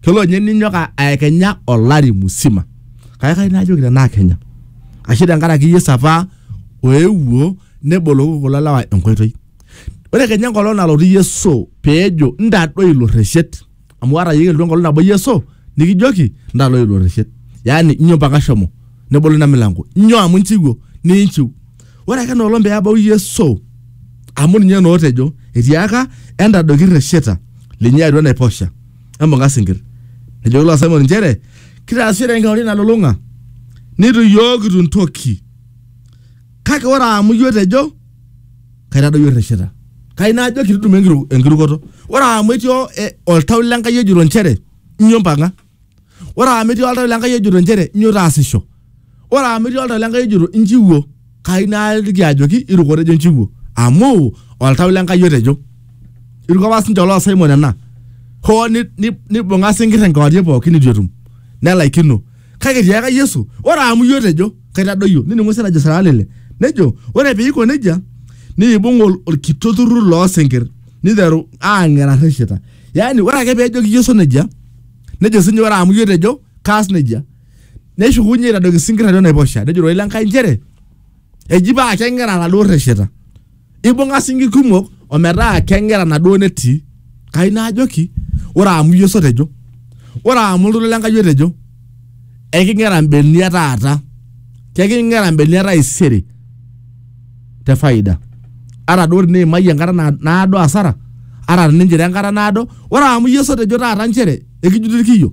kelo nye ninyok a- aekenya olari musima kake kai najoki tenaa kenya ashu tenkaraki yesu apa oewuo neboloki kulo lewa enkoitoi ore kenya enkolong nalotu yesu peejo ntadoi ilo rreshet amu ata yie elotu enkolong nabo yesu nikijoki ntadoi ilo rreshet yaani inyo mpaka shomo nebolo ina milango inyo amu inchiwuo ninchiu ore ake enoolong peebau yesu amu ninye nootejo etiaka entadoiki irresheta linyi atua enaiposha embuka sinkir. Nejo ilo asaimoni nchere, kitaasishore enkewarie nalulung'a nitu iyiook itu ntoki. Kake ore amu iyiook tejo kaitadoyio irreshita. Kai najo kitudumu enkiru, enkirukoto. Ore amu etii o- e- oltau le Nkai ojito nchere inyo mpang'a. Ore amu etii oltau le Nkai ojito nchere inyo taasisho. ore amu etii oltau lenkai ojoto inchiwuo kai naaliki ajoki irukore ejo inchiwuo amu oltau lenkai otejo iruko apa sinche oloo Simon ena hoo ni- ni- nibung'a sinkir enkewarie pookin nitu etum nelaikino kake etiaka Yesu ore amu iyie otejo kaitadoyio nining'u sii enajo sala lile nejo ore piiko nejia niibung ol- olkitok turrur loosinkir niteru aang'era rrishita yani ore ake pejoki Yesu nejia nejo sinye ore amu iyie otejo kaas nejia neshukunye aitadoki isinkir atua enaiposha nejo ororei lenkai nchere eji paa keng'era laduo rresheta ibung'a sinkir kumok ometaa keng'era naduo netii kai naajoki ore amu iyie osotejo ore amu oltoilo lenkai otejo eking'era mbenia taata keking'era mbenia taisere te faida ata duo teniimayie enkata na- naado asara ata tininchira enkata naado ore amu iyie osotejo taata nchere ekijuti irkiyo